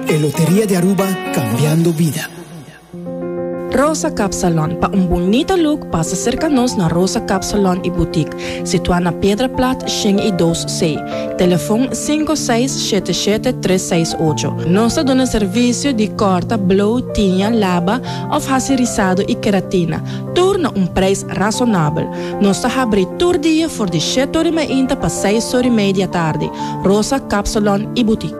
E Loteria di Aruba, Cambiando Bida. Rosa Cap Salon, pa un bunita look pasa serka nos na Rosa Cap Salon y Boutique, situa na Piedra Plat shen y dos C, telefon sinku seis shete shete tres seis ocho. Nos ta duna servicio di corta, blow, tiña, laba of haci rizado y keratina, tur na un prijs razonabel. Nos ta habri tur dia for di shete ori mainta pa seis ori mei di atardi. Rosa Cap Salon y Boutique.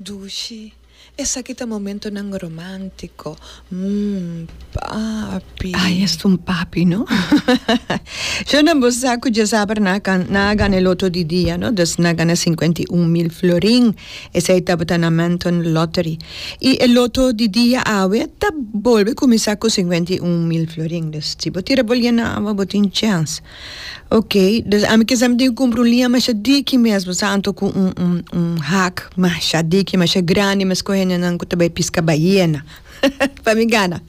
Dushi, Esaki ta momentonan romántico, mm, papi. Ay, es ta un papi, no? Shonnan, bo sa cu djasabra nan a, nan a gana e loto di dia, no? Dus nan a gana cincuenta y un mil florin. Esey tabata na Manton Lottery. Y e loto di dia awe ta bolbe cuminsa cu cincuenta y un mil florin. Dus si bo tira bolia na awa, bo tin chance. Ok, dus ami kisa mi tin ke kumpra un liña masha diki mesbo, sa anto ku un un un hak masha diki, masha grandi, mi a skohe nenan ku ta bai piska baiena pa mi gana.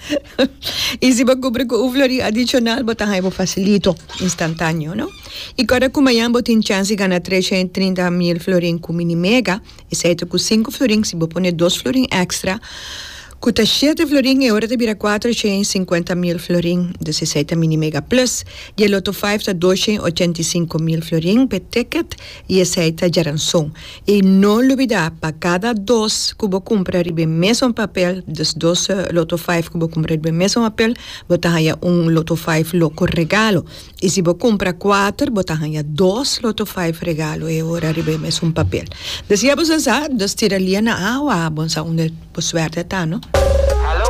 I si bo kumpra ku un flori adishonal bo ta haña bo fasilito, instantaneo, no? I kòrda ku mañan bo tin chans di gana tresha i trinta mil florin ku Minimega, esei ta ku sinku florin, si bo pone dos florin èkstra, Ku ta shete florin e ora ta bira kuater shen i sinkuenta mil florin. Desesei ta mini mega plus. Dje loto five ta dos shen i ochenta i sinku mil florin p'e ticket i esei ta djaranson. I no lubida pa kada dos ku bo kumpra riba e mesun papel, dus dos loto five ku bo kumpra riba e mesun papel, bo ta haña un loto five loko regalo. I si bo kumpra kuater, bo ta haña dos loto faiv regalo e ora riba e mes un papel. Desiá bo sa sa, dus tira lia na awa, bo sa unda bo suerte a ta no.